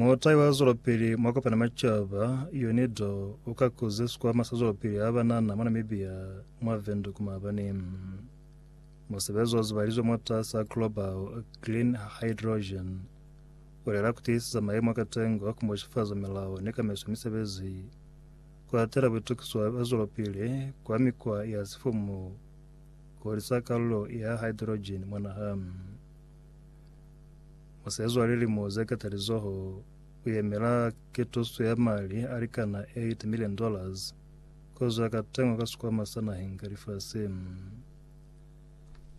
Mutai wa zwelopili mwa kopana macaba, Yone Dho u ka kuze sikwama sa zwelopili ha banana mwa Namibia mwa Windhoek maabani. Musebezi o zibalizwe mwatasa Global Green Hydrogen u lela kutiisisa mayemo a katengo a kumboshifaza milao ni kamaiso ya misebezi, ku hatela buitukiswa bwa zwelopili kwa mikwa ya sifumu ku hulisa kalulo ya hydrogen mwa naha. Musezwa lilimo ze katalizoho u yemela ketuso ya mali a likana 8 million dollars kozwa ka tengwa ka sikwama sa naheng ka lifasi.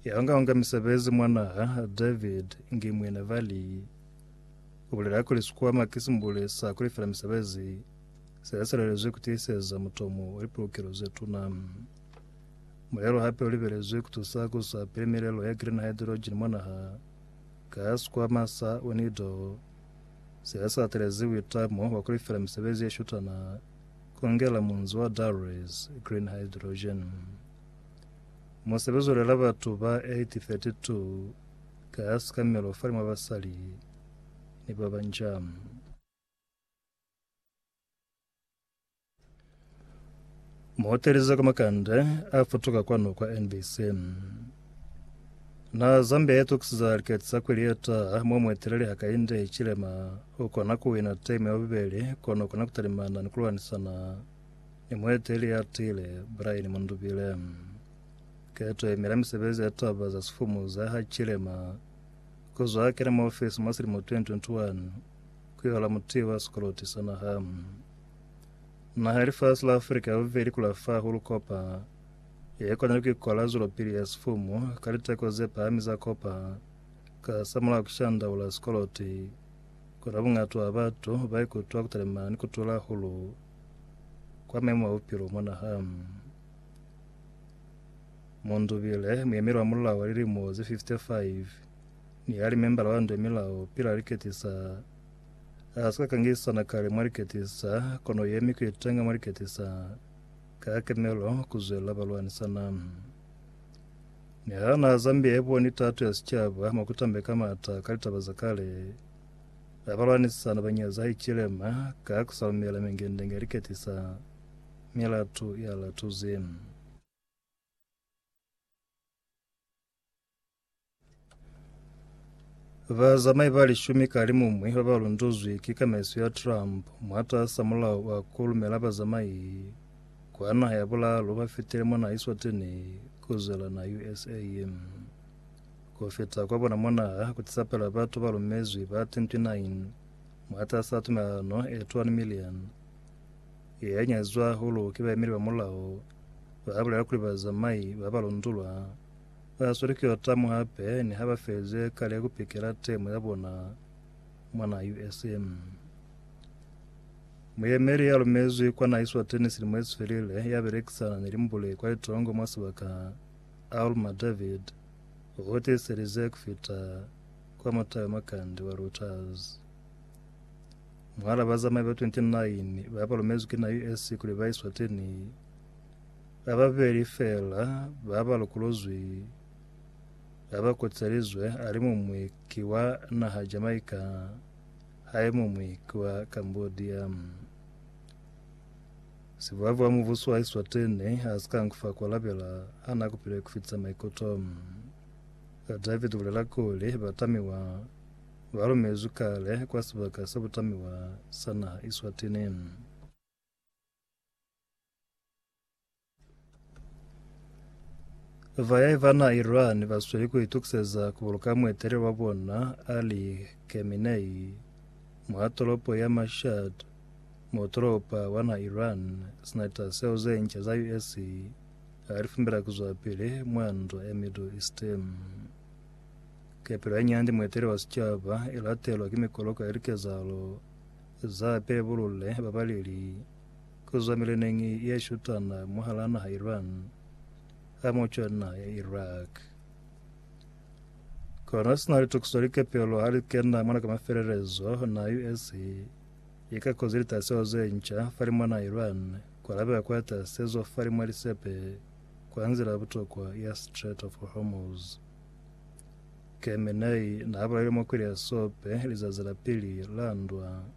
Ya unga-unga misebezi mwa naha David Ngimwine Vali u bulela kuli sikwama ki simbule sa ku lifela misebezi se sa lelezwi ku tiiseza mutomo wa lipulukelo ze tuna. Mulelo hape u libelezwi ku tusa ku sa pili milelo ya green hydrogen mwa naha ka sikwama sa UNIDO se sa atelezi uitamo wa ku lifela misebezi ye shutana ku ngela munzi wa Darwis green hydrogen. Musebezi u lela batu ba 832 ka sikamelo fa limwa basali ni ba banca. Muhoteleza kwa makande a futuka kwanu kwa NBC. Na Zambia ya tokisiza likati za kweli ya taha mwa mueteleli hakainde chilema ukona kuwina teme ya bubeli kono ukona kutalimana ni kulwanisana ni mueteleli ya tile Brian Mundubile. Keto ye mela misebezi ya taba za sifumu za ha chilema kuzwa kena mwa ofisi mwa silimo 2021 ku yola muti wa sikoloti sa naha. Naha ya lifasi la Afrika ya bubeli ku la fa hulu kopa ye kwanile ku ikola zwelopili ya sifumu ka liteko ze pahami za kopa ka hasamulaho ku shandaula sikoloti. Kono bungato wa batu ba ikutwa ku talimana ni ku tula hulu kwa maimo a bupilo mwa naha. Mundubile, muyemeli wa mulao wa lilimo ze 55, Ni yali membala wa Nde Milao pila liketisa. Ha si ka ka ngisana kale mwa liketisa, kono yemi ku itenga mwa liketisa ka kemelo ku zwela balwanisana. Niha naha Zambia iboni tato ya sicaba mwa ku tambeka mata ka litaba za kale, ha balwanisana ba nyaza Hichilema ka ku sa lumela mingendenge ya liketisa, mi latu ya latuzi. Bazamai ba lishumi ka limumwi ba ba lunduzwi ki kamaiso ya Trump mwataasa mulao wa ku lumela bazamai kwa naha ya bulaalu ba fitile mwa naha Eswatini ku zwela naha USA. Ku fita kwa bona mwa naha ku tisa pela batu ba lumezwi ba 29 mwataasa tumelano e 21 million ye nyazizwa hahulu ki baemeli ba mulao, ba bulela kuli bazamai ba ba lundulwa Ba sweli ki yo tamu hape ni ha ba feze kale ku pikela temo ya bona mwana USA. Muyemeli ya lumezwi kwa na Eswatini silimo ye sifelile ya belekisana ni limbule kwa litongo mwa sibaka Alma David u tiiselize ku fita kwa mutayo makande wa Reuters. Mwahala bazamai ba 29 ba ba lumezwi ki na US kuli ba Eswatini Ba babeli feela ba ba lokolozwi ha ba kotselizwe, ali muñwi ki wa naha Jamaica ha ye muñwi ki wa Cambodia. Sibuabu wa mubuso wa Eswatini ha si ka nkufa ku alabela ha na kupile ku fitisa maikuto. David u bulela kuli, Batamiwa ba lumezwi kale kwa sibaka sa butamiwa sa naha Eswatini. Vayahi va na Iran va sweli ku itukiseza ku buluka mueteleli wa bona Ali Khamenei mwa tolopo ya Mashhad mo tolopa wa na Iran sina taseo ze nca za US ha li fumbela ku zwa pili mwa ndwa ya Middle East. Kepelo ya nyandi mueteleli wa sicaba i latelwa ki mikoloka ya likezahalo za pebulule babaleli Ku zwa mileneñi ye shutana mwahal'a naha Iran ha m'o cwani naha ya Iraq. Kono sina litukiso likepelo ha li kena mona ka mafelelezo, naha USA i ka kozi litaseho ze nca fa limwa naha Iran ku alabela kwa tasezo fa limwa lisepe kwa nzila ya butokwa ya Strait of Hormuz. Khamenei n'a bulahile mwa kweli ya sope lizazi la pili la ndwa.